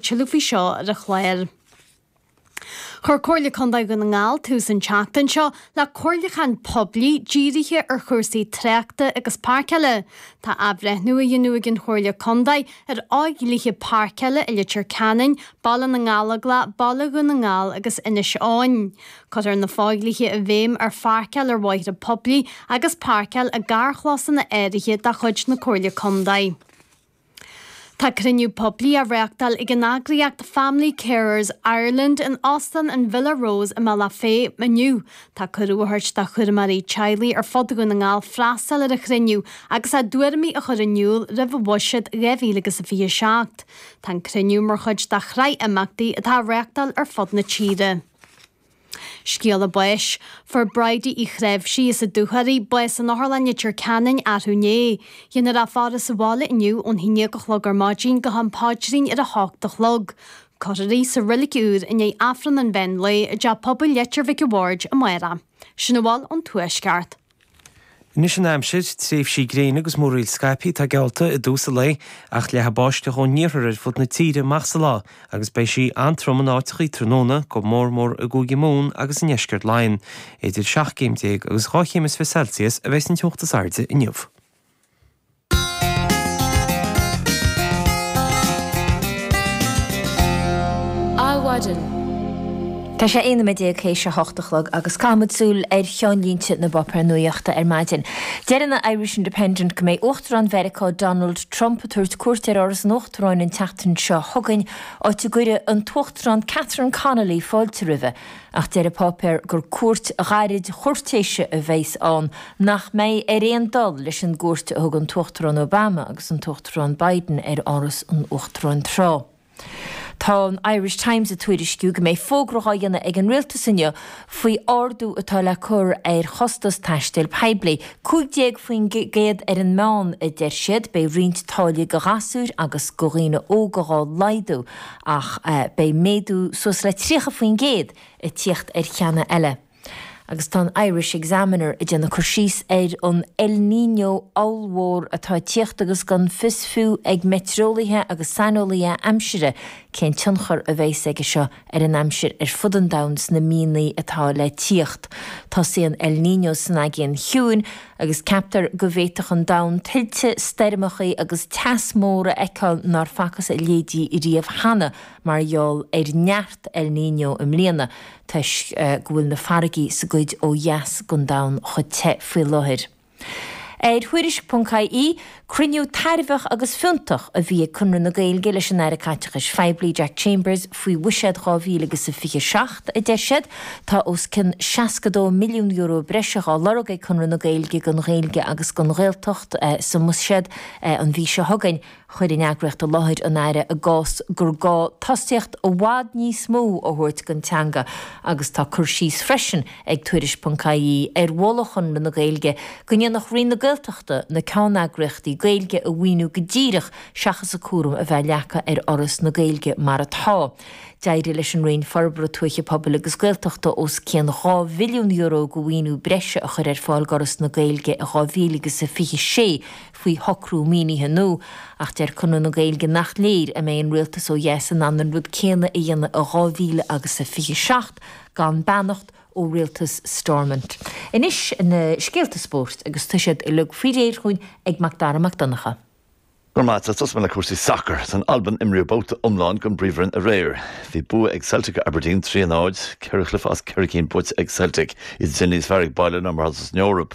Tuilleadh faoi seo ar an chlár. Chuir Comhairle Contae Dhún na nGall tús an tseachtain seo le comhairliúchán poiblí dírithe ar chúrsaí tráchta agus páirceála. Tá athbhreithniú a dhéanamh ag an Chomhairle Contae ar fhodhlíthe páirceála i Leitir Ceanainn, Baile na nGallóglach, Baile Dhún na nGall agus Inis Eoghain. Cuirtear na fodhlíthe i bhfeidhm ar pháirceáil ar bhóithre poiblí agus páirceáil i gcarrchlosanna áirithe de chuid na Comhairle Contae. Tá cruinniú poiblí á reáchtáil ag an eagraíocht Family Carers Ireland in Óstán an Villa Rose i mBaile Átha Féith inniu. Tá cuireadh á thabhairt do chúramóirí teaghlaigh ar fud Dhún na nGall freastal ar an chruinniú agus a dtuairimí a chur in iúl roimh bhuiséad 2027. Tá an cruinniú mar chuid de shraith imeachtaí atá á reáchtáil ar fud na tíre. Scéala báis. Fuair Bridie Uí Chnáimhsí as an Dúchoraidh bás in Otharlann Leitir Ceanainn athrú inné. Déanfar a faire sa bhaile inniu ón haon déag a chlog ar maidin go ham Paidrín ar a hocht a chlog. Cuirfear í sa reilig úr i ndiaidh Aifreann an mheán lae i dTeach Pobail Leitir Mhic an Bhaird amárach. Sin a bhfuil ón tuaisceart. Anois an aimsir, tréimhsí gréine agus múraíl scaipthe atá geallta i dtús an lae ach leathfidh báisteach ón iarthar ar fud na tíre amach sa lá agus beidh sí an-trom in áiteachaí tráthnóna, go mór mór i gCúige Mumhan agus i ndeisceart Laighean. Idir seacht gcéim déag agus dhá chéim is fiche Celsius a bheas an teocht is airde inniu. Adhmhaidin. Tá sé 11 noiméad th'éis a hocht a chlog agus caithfimid súil ar cheannlínte na bpáipéar nuaíochta ar maidin. Deir an Irish Independent go mbeidh Uachtarán Mheiriceá Donald Trump ag tabhairt cuairt ar Áras an Uachtaráin an tseachtain seo chugainn, áit a gcuirfidh an tUachtarán Catherine Connolly fáilte roimhe. Ach deir an páipéar gur cuairt ghairid chúirtéise a bheas ann nach mbeidh ar aon dul leis an gcuairt a thug an tUachtarán Obama agus an tUachtarán Biden ar Áras an Uachtaráin tráth. Tá an Irish Times ag tuairisciú go mbeidh fógra á dhéanamh ag an Rialtas inniu faoi ardú atá le cur ar chostas taistil poiblí. 15 faoin gcéad ar an meán, a deir siad. Beidh roinnt táillí do ghasúir agus do dhaoine óga dhá laghdú. ach beidh méadú suas le 30% ag tíocht ar cheanna eile agus tá an Irish Examiner ag déanamh cur síos ar an El Niño ollmhór atá ag tíocht agus gan fios fiú ag meitreolaithe agus saineolaithe aimsire cén tionchar a bheas aige seo ar an aimsir ar fud an domhain sna míonna atá le tíocht. Tosaíonn El Niño san Aigéan Ciúin agus ceaptar go bhféadfadh an domhan tuilte, stoirmeachaí agus teas mór a fheiceáil nár facthas a leithéidí riamh cheana mar gheall ar neart El Niño na bliana toisc go bhfuil na farraigí sa gcuid ó dheas den domhan chomh te faoi láthair. Ar Thuairisc. ie. Cruinniú tairbheach agus fiúntach a bhí ag Conradh na Gaeilge leis an Aire Caiteachais Phoiblí, Jack Chambers, faoi Bhuiséad 2027, a deir siad. Tá os cionn €62 milliún breise á lorg ag Conradh na Gaeilge don Ghaeilge agus don Ghaeltacht sa mBuiséad an mhí seo chugainn. Chuir an eagraíocht i láthair an Aire a gcás gur gá tosaíocht i bhfad níos mó a thabhairt don teanga agus tá cur síos freisin ag Tuairisc.ie ar mholadh Chonradh na Gaeilge go ndéanfadh Roinn na Gaeltachta na ceanneagraíochtaí Gaeilge a mhaoiniú go díreach seachas an cúram a bheith leagtha ar Fhoras na Gaeilge mar atá. D'éirigh leis an Roinn Forbartha Tuaithe Pobail agus Gaeltachta os cionn dhá mhilliún euro de mhaoiniú breise a chur ar fáil d'Fhoras na Gaeilge in 2026 faoi shocrú maoinithe nua ach deir Conradh na Gaeilge nach léir an mbeidh an rialtas ó dheas in ann an rud céanna a dhéanamh in 2027 gan beannacht ó rialtas Stormont. Anois na scéalta spóirt agus tá siad uilig faoi réir chugainn ag Mac Dara Mac Donncha. Go raibh maith agat. Tosóidh mé le cúrsaí sacair. San Albain imríodh babhta iomlán den bPríomhroinn aréir. Bhí bua ag Celtic ar Aberdeen, 3 a 0. Ceithre chluiche as ceithre cinn buaite ag Celtic. Iad ag déanamh níos fearr ag baile ná mar atá san Eoraip.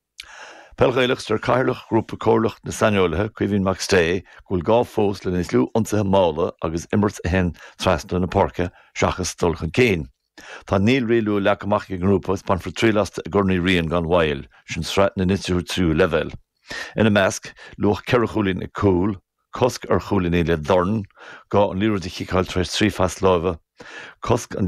Peil Ghaelach Deir Cathaoirleach Ghrúpa Comhairleach na Saineolaithe, Caoimhín Mac Stay, go bhfuil gá fós le níos lú ionsaithe malla agus imirt a théann trasna na páirce seachas dul chun cinn. Tá naoi riail nua leagtha amach ag an ngrúpa agus bainfear triail astu i gCorn Uí Riain gan mhoill, sin sraith na n-institiúidí tríú leibhéal. Ina measc, luach ceithre chúilín ag cúl, cosc ar chúilíní le dorn, gá an liathróid a chiceáil tar éis trí phas láimhe, cosc an